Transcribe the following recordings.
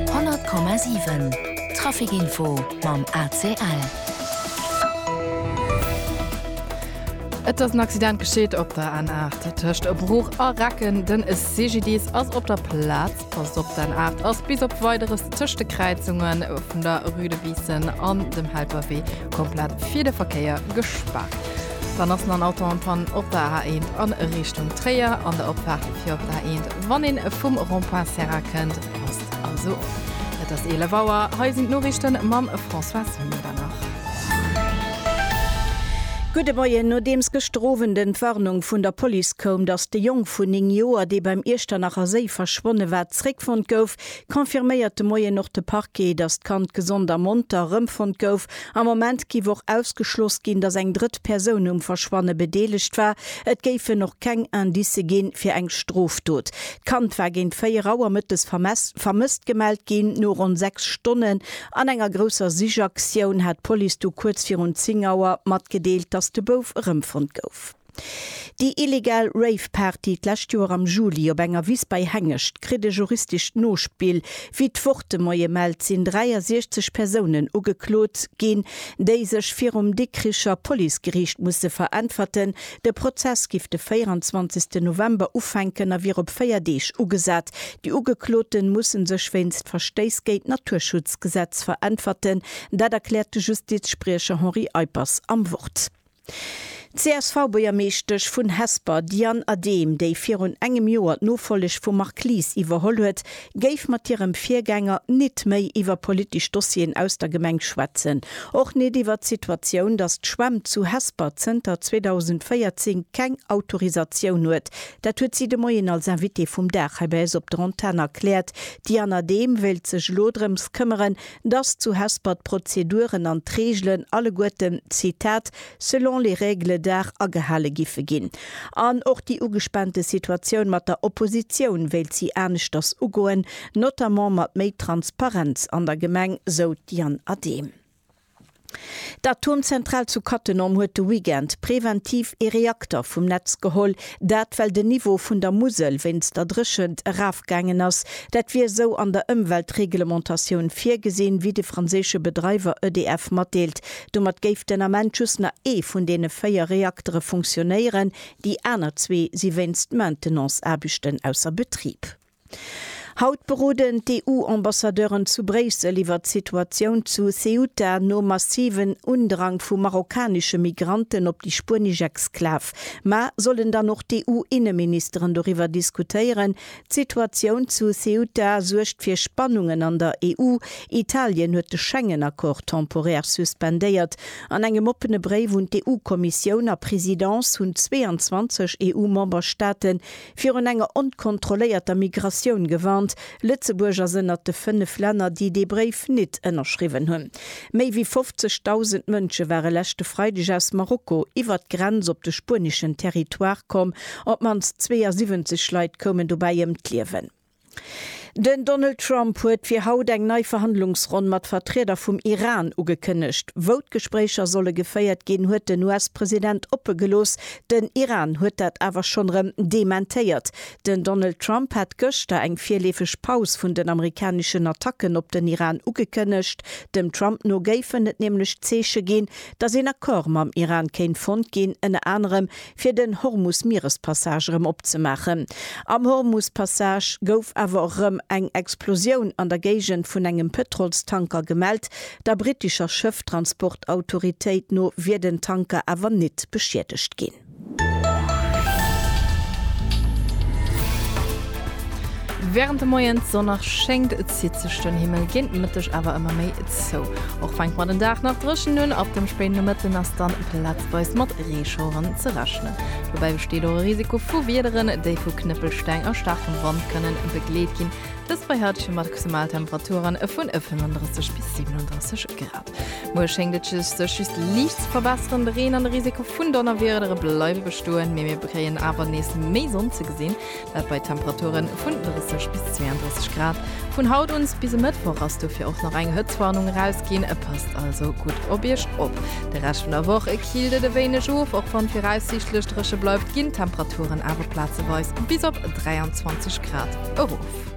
100,7 Traficinfo mam ACL. Et ass en Accident gescheet op der N8 tëscht Bruch a Recken. Den CGDIS ass op der Plaz. Passt op, d'N8 ass bis op Weideres tëscht de Kräizungen vun der Rue de Biissen an dem Helperwee komplett fir de Verkéier gespaart. Dann ass nach Auto an Pann op der A1 an Richtung Tréier an der Opfaart fir op der A1, wann een vum Rond-point Serra kënnt. Passt also op. Et ass 11 Auer, hei sinn d'Noriichten mam Françoise Mühlbach. Gudde Moien, Nodeems gëschter Owend en d'Warnung vun der Police koum, datt de Jong vun 9 Joer, dee beim Iechternacher Séi verschwonne war, zréckfonnt gouf, confirméiert de Moien och de Parquet, datt d'Kand gesond a monter erëmfonnt gouf Am Moment giff och ausgeschloss ginn, dass eng drëtt Persoun um Verschwanne bedeelegt war. Et géifen och keng Indicë ginn fir eng Strofdot. D'Kand war géint 4 Auer mëttes vermësst gemellt ginn. No ronn 6 Stonnen an enger grousser Sichaktioun hat d'Police du kuerz virun 10 Auer matgedeelt, dass de Bouf erëmfonnt gouf. Déi illegal Rave-Party d'lescht Joer am Juli op enger Wiss bei Hengescht kritt e juristescht Nospill. Wéi d'Wortemoie mellt, sinn 63 Persounen ugeklot ginn, déi sech virum Dikricher Policegeriicht musse veräntwerten. De Prozess giff de 24 November ufänken a wier op véier Deeg ugesat. Déi Ugekloten mussen sech wéinst Verstéiss géint d'Naturschutzgesetz veräntwerten. Dat erkläert de Justizspriecher Henri Eippers am Wort. D'CSV-Buergermeeschtesch vun Hesper, Diane Adehm, déi virun engem Joer d'Nofolleg vum Marc Lies iwwerholl huet, géif mat hirem Virgänger nit méi iwwer politesch Dossieren aus der Gemeng schwätzen. Och nit iwwer d'Situatioun, datt d'Schwämm zu Hesper zënter 2014 keng Autorisatioun huet. Dat huet si de Moien als Invitée vum Dag hei bei eis op der Antenn erkläert. D'Diane Adehm wéilt sech elo drëms këmmeren, dass zu Hesper d'Prozeduren an d'Reegelen alleguerten, Zitat, selon les règles d'art agehale giffe ginn. An och déi ugespaante Situatioun mat der Oppositioun wéilt si aneschters ugoen, notamment mat méi Transparenz an der Gemeng, sou d'Diane Adehm. D'Atomzentral zu Cattenom huet de Weekend preventiv ee Reakter vum Netz geholl. Dat well den Niveau vun der Musel wéinst der Dréchent erafgaangen ass. Dat wier esou an der Ëmweltreglementatioun virgesinn, wéi de franséische Bedreiwer EDF matdeelt. Domat géif den Ament just nach ee vun deene véier Reaktere funktionéieren, déi aner zwee si wéinst Maintenance-Aarbechten ausser Betrib. Haut beroden d'EU-Ambassadeuren zu Bréissel iwwer d'Situatioun zu Ceuta nom massiven Undrang vu marokkanesche Migranten op déi spuenesch Exklav. Mä sollen dann och d'EU-Inneministeren doriwwer diskutéieren? D'Situatioun zu Ceuta suergt fir Spannungen an der EU. Italien huet de Schengen-Accord temporär suspendéiert. An engem oppene Bréif un d'EU-Kommissioun a Presidence hunn 22 EU-Memberstaaten virun enger onkontrolléierter Migratioun gewarnt. Lëtzebuerg ass ënnert de fënnef Länner, déi dee Bréif nit ënnerschriwwen hunn. Méi wéi 50.000 Mënsche ware leschte Freideg aus Marokko iwwert d'Grenz op de spueneschen Territoire komm. Op d'mannst 72 Leit koumen dobäi ëm d'Liewen. Den Donald Trump huet fir haut eng nei Verhandlungsronn mat Vertrieder vum Iran ugekënnegt. Wou d'Gespréicher solle geféiert ginn, huet den US-President oppe gelooss. Den Iran huet dat awer schonn erëm dementéiert. Den Donald Trump hat gëschter eng virleefeg Paus vun den amerikaneschen Attacken op den Iran ugekënnegt. Dem Trump no géifen et nämlech Zeeche ginn, datt een Accord mam Iran kéint fonnt ginn, ënner anerem fir den Hormus-Mierespassage erëm opzemaachen. Am Hormus-Passage gouf awer och erëm eng Explosioun an der Géigend vun engem Pëtrolstanker gemellt. Der brittescher Schëfftransport-Autoritéit no wier den Tanker awer nit beschiedegt ginn. Während de Moien sonneg schéngt, zitt sech den Himmel géint Mëtteg awer ëmmer méi zou. Och fänkt mer den Dag nach dréchen un, ab dem spéiden Nomëtten ass dann Platz. weist mat Reeschaueren ze rechnen. Dobäi besteet och e Risiko vu Wiederen, déi vu Knëppelsteng a staarkem Wand kënnen begleet ginn. Dëst bei haitege Maximaltemperaturen vun 35 bis 37 Grad. Muer schéngt et sech just liicht ze verbesseren. De Reen an de Risiko vun Donnerwiedere bleiwe bestoen, mee mir kréien awer nees méi Sonn ze gesinn. Dat bei Temperature vun 30 bis 32 Grad. Vun haut un bis e Mëttwoch ass dofir och nach eng Hëtztwarnung erausginn. Et passt also gutt op Iech op. De Rescht vun der Woch killt et e wéineg of. Och wann viraussiichtlech dréche bleift, ginn d'Temperaturen awer plazeweis bis op 23 Grad erof.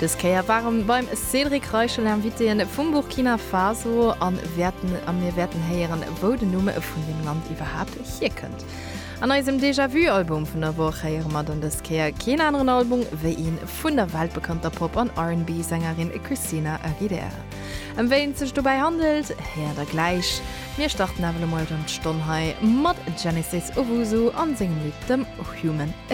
Dës Kéier ware mir beim Cédric Reichel Invitéë vum Burkina Faso a wäerten a mir wäerten héieren, wou den Numm vun deem Land iwwerhaapt hierkënnt. An eisem Déjà-vu-Album vun der Woch héiere mer dann dës Kéier keen aneren Album wéi ee vun der weltbekannter Pop an RnB-Sängerin Christina Aguilera. Ëm wéi et sech dobäi handelt, héiert der gläich. Mir starten awer elo mol erëm d'Stonn hei mat Genesis Owusu a sengem Lidd dem Human Again.